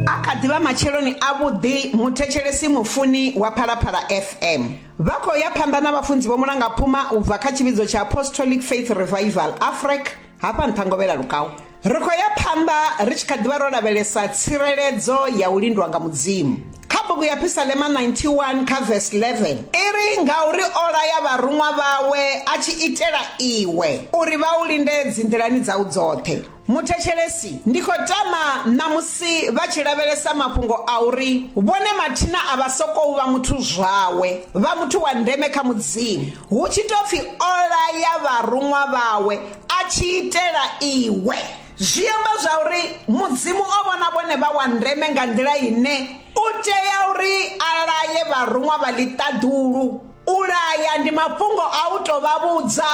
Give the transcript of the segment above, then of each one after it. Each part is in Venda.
A kha ḓi vha matsheloni avhuḓi, muthetshelesi mufuni wa Phalaphala FM. Vha khou ya phanḓa na vhafunzi vho Mulangaphuma u bva kha tshivhidzo tsha Apostolic Faith Revival, Afrec, hafha nṱha Ngovhela Lukau. Ri khou ya phanḓa ri tshi kha ḓi vha ro lavhelesa tsireledzo ya u lindwa nga Mudzimu. Kha bugu ya Phisalema 91 kha vesi 11 i ri, Ngauri o laya vharuṅwa vhawe a tshi itela iwe, uri vha u linde dzinḓilani dzau dzoṱhe. Muthetshelesi, ndi khou tama ṋamusi vha tshi lavhelesa mafhungo a uri vhone mathina a vha sokou vha muthu zwawe, vha muthu wa ndeme kha Mudzimu, hu tshi tou pfi o laya vharuṅwa vhawe a tshi itela iwe. Zwi amba zwauri Mudzimu o vhona vhone vha wa ndeme nga nḓila ine u tea uri a laye vharuṅwa vha ḽiṱaḓulu. U laya ndi mafhungo a u tou vha vhudza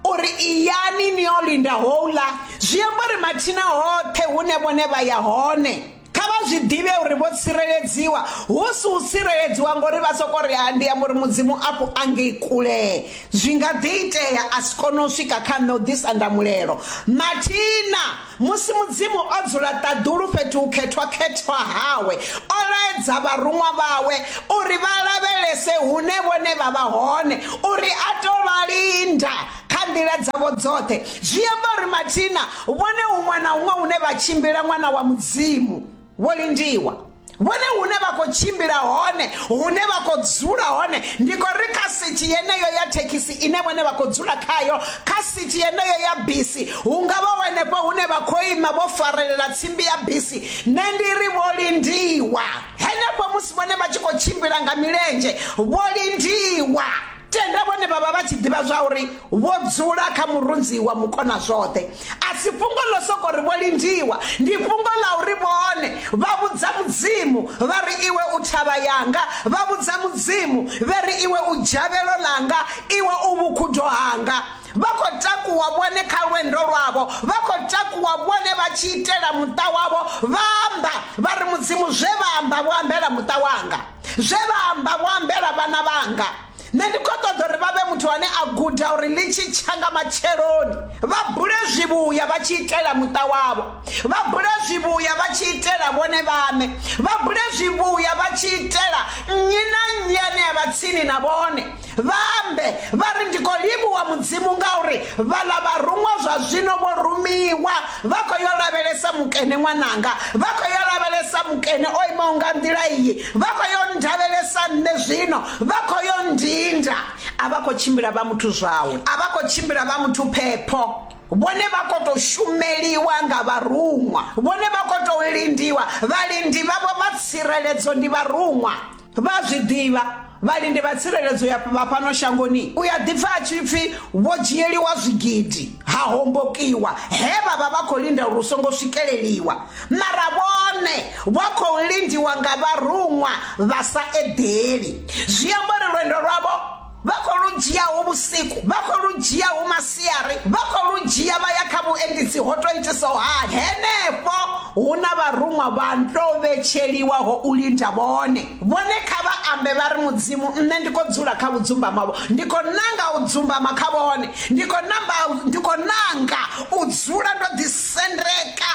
uri iyani ni yo linda houḽa zwi amba uri mathina hoṱhe hune vhone vha ya hone kha vha zwi ḓivhe uri vho tsireledziwa hu si u tsireledziwa ngori vha soko ri ha ndi amba uri mudzimu afho angei kule zwi nga ḓi itea a si kone u swika kha nṋe u ḓisa ndamulelo mathina Musi Mudzimu o dzula ṱaḓulu fhethu hukhethwa-khethwa hawe, o laedza vharuṅwa vhawe uri vha lavhelese hune vhone vha vha hone, uri a tou vha linda kha nḓila dzavho dzoṱhe. Zwi amba uri mathina vhone huṅwe na huṅwe hune vha tshimbila, ṅwana wa Mudzimu vho lindiwa vhone hune vha khou tshimbila hone hune vha khou dzula hone ndi khou ri kha sithi yeneyo ya thekhisi ine vhone vha khou dzula khayo kha sithi yeneyo ya bisi hu nga vha wenefho hune vha khou ima vho farelela tsimbi ya bisi nṋe ndi ri vho lindiwa henefho musi vhone vha tshi khou tshimbila nga milenzhe vho lindiwa tenda vhone vha vha vha tshi ḓivha zwa uri vho dzula kha murunzi wa mukona zwoṱhe a si fhungo ḽo soko ri vho lindiwa ndi fhungo ḽa uri vhone vha vhudza mudzimu vha ri iwe u thavha yanga vha vhudza mudzimu vhe ri iwe u dzhavhelo ḽanga iwe u vhukhudo hanga vha khou takuwa vhone kha lwendo lwavho vha khou takuwa vhone vha tshi itela muṱa wavho vha amba vha ri mudzimu zwe vha amba vho ambela muṱa wanga zwe vha amba vho ambela vhana vhanga nṋe ndi khou ṱoḓa uri vha vhe muthu ane a guda uri ḽi tshi tsha nga matsheloni vha bule zwivhuya vha tshi itela muṱa wavho vha bule zwivhuya vha tshi itela vhone vhaṋe vha bule zwivhuya vha tshi itela nnyi na nnyi ane a vha tsini na vhone Vha ambe, vha ri, Ndi khou livhuwa Mudzimu ngauri vhaḽa vharuṅwa zwa zwino vho rumiwa, vha khou yo lavhelesa mukene ṅwananga, vha khou yo lavhelesa mukene o imaho nga nḓila iyi, vha khou yo ndavhelesa nṋe zwino, vha khou yo ndinda. A vha khou tshimbila vha muthu zwawe, a vha khou tshimbila vha muthu phepho. Vhone vha khou tou shumeliwa nga vharuṅwa, vhone vha khou tou lindiwa, vhalindi vhavho vha tsireledzo ndi vharuṅwa. vha zwi ḓivha vhalindi vha tsireledzo ya vha fhano shangoni u ya ḓipfa a tshi pfi vho dzhieliwa zwigidi ha hombokiwa he vha vha vha khou linda uri u songo swikeleliwa mara vhone vho khou lindiwa nga vharuṅwa vha sa eḓeli zwi amba uri lwendo lwavho vha khou lu dzhiaho vhusiku vha khou lu dzhiaho masiari vha khou lu dzhia vha ya kha vhuendisi ho to itisaho hani henefho hu na vharuṅwa vha nto vhetsheliwaho u linda vhone vhone kha vha ambe vha ri mudzimu nṋe ndi khou dzula kha vhudzumbama vho ndi khou nanga u dzumbama kha vhone ndi khou namba ndi khou nanga u dzula ndo ḓisendeka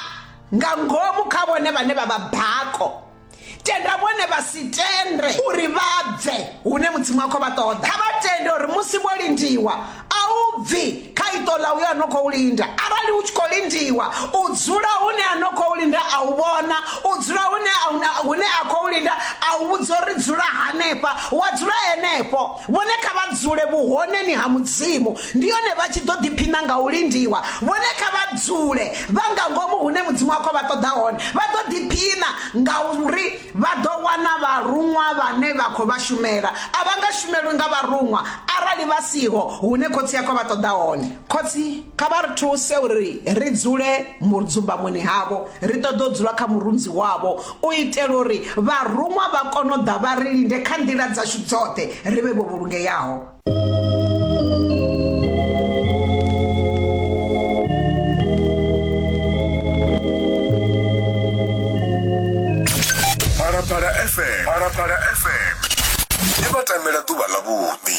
nga ngomu kha vhone vhane vha vha bako tenda vhone vha si tende uri vha bve hune mudzimu wa khou vha ṱoḓa kha vha tende uri musi vho lindiwa a u bvi kha iṱo ḽa uyo a no khou linda arali u tshi khou lindiwa u dzula hune a no khou linda a u vhona u dzula hune hune a khou linda a u vhudza uri dzula hanefha wa dzula henefho Vhone kha vha dzule vhuhoneni ha Mudzimu, ndi hone vha tshi ḓo ḓiphina nga u lindiwa. Vhone kha vha dzule vha nga ngomu hune Mudzimu wa khou vha ṱoḓa hone, vha ḓo ḓiphina ngauri vha ḓo wana vharuṅwa vhane vha khou vha shumela. A vha nga shumelwi nga vharuṅwa arali vha siho hune Khotsi a khou vha ṱoḓa hone. Khotsi, kha vha ri thuse uri ri dzule mudzumbamoni havho, ri ṱoḓa u dzula kha murunzi wavho. u itela uri vharuṅwa vha kone u ḓa vha ri linde kha nḓila dzashu dzoṱhe ri vhe vho vhulungeaho. Phalaphala FM Phalaphala FM ndi vhatamela ḓuvha ḽa vhuḓi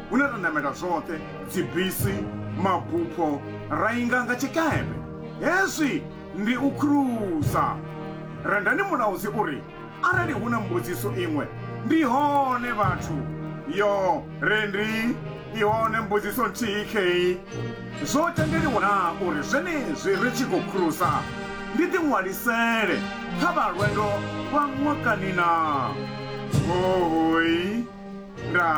hune ra namela zwoṱhe dzibisi mabupho ra inga nga tshikepe hezwi ndi u khrusa rendani mulaudzi uri arali hu na mbudziso iṅwe ndi hone vhathu yo rendi i hone mbudziso nthihi kheyi zwo tendeliwa na uri zwenezwi ri tshi khou khrusa ndi ḓiṅwalisele kha vha lwendo lwa ṅwakani na hohoi nda